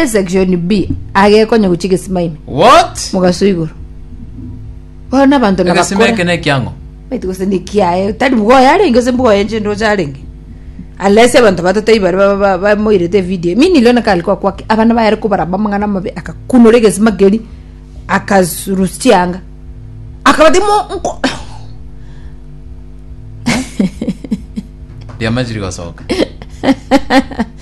Section B agekonya gochia egesima ime What? mogaso igoro bono na abanto na Egesima eke bakora na ekiang'o? maiti gose ni kiaye tari mgoya arenge gose mboya enche ndoche arenge unless abanto batato ibare ba- ba- ba- bamoirete video mini leo nakari kwa kwake abana bayare kobaramba amang'ana amabe akakunora egesima keri akarusia chianga akabati mo nko Riamachiri gosoka.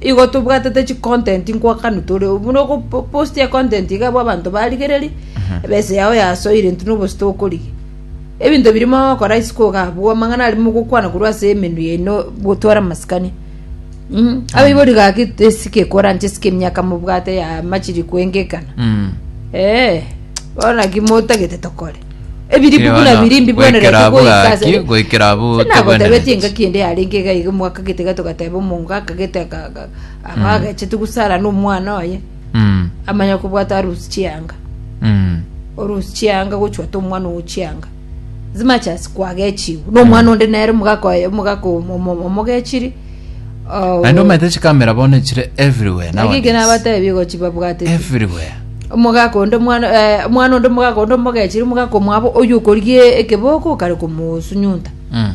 Igo tobwatete chicontent nkwakanu tore obu buna ogopostia econtent iga abwo abanto barigereria ebesa yao yasoire intwe nobosuto okorigia ebinto biria mogokora isiko iga abwo amang'ana aria mogokwana korwa ase emenwa yaino gotwara amasikani Mm. Abaibori gaki esike ekoranche esike emiaka mobwate ya machiri kwengekana. Mm. Eh, bono naki motagete tokore. Ebiribu Erio buna bono, biri mbibwenerete goikera abwo goika ase gaki, ere. goikera abwo Ase nagotebeti tebwenereti. engaki ende yarenge iga iga omonto akagete iga togateba omongo akagete aka- aka- aba agachete gusara na omwana oye Mm, amanya kobwata arusi chianga mm, orusi chianga gochwata omwana ogo chianga as much as kwagechiwu na omwana onde nere omogaka oye omogaka omo- omo- omogechiri Naende omanyete chikamera bono chire everywhere Naki nowadays. nabateebie gochi babwatete Everywhere. omogaka onde omwana eh, omwana onde omogaka onde omogechiri omogaka omwabo oyo okorigia ekeboko okare komosunyunta Mm.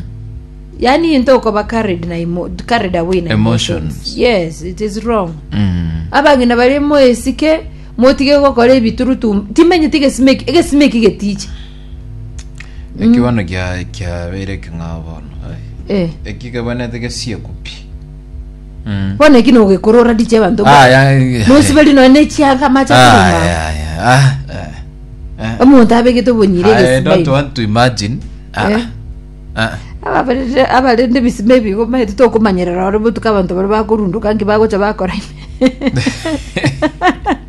yaani into okoba carried na emo, carried away na Emotions. yes it is wrong Mm. abang'ina bari moesike motige gokora ebiturutu timenyete egesime eki- egesime eki getiche Eki bono kia- kiabeire ekeng'ao bono ai. Eh. eki kebwenete gesieko pi Mm. bono eki nogekorora riche abanto Aya, eh, nosiberi nonya nechiaga amache Aya, akorema aya, ah, eh, eh. omonto abegete obonyire I don't egesibairi want to imagine. Ah, Eh. ah, ababerete abarende ebisima ebigo maete tokomanyerera ore botuko abanto bare bakorundoka nki bagocha bakora ime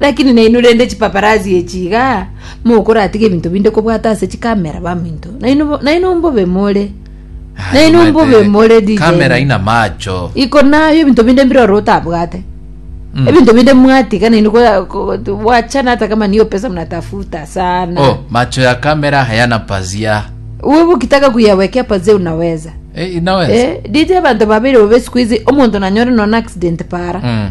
Lakini nainwe rende chipaparasi echi iga, mokoratige ebinto binde kobwata ase chikamera baminto. Nainwe bo- nainwe mbobe more. Nainwe mbobe more DJ. kamera ina macho Iko nayo ebinto binde mbiroro otabwate. Mm. Ebinto binde mwatiga nainwe ko- ko- ko- wachana hata kama niyo pesa mnatafuta sana. oh macho ya kamera hayana pazia Wewe ukitaka kuyawekea pazia unaweza. eh, inaweza Eh, DJ bantu babiri bobe siku hizi omonto nanyore nona accident para. Mm.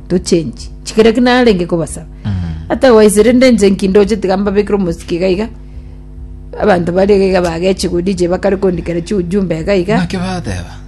tochenchi chikera ki narenge kobasaba atagwaisire nde inche nki ndoche tiga mbabekere omosiki iga iga abanto bare iga iga bageche godia inche bakare kondikera chiujumbe iga iga naki bateba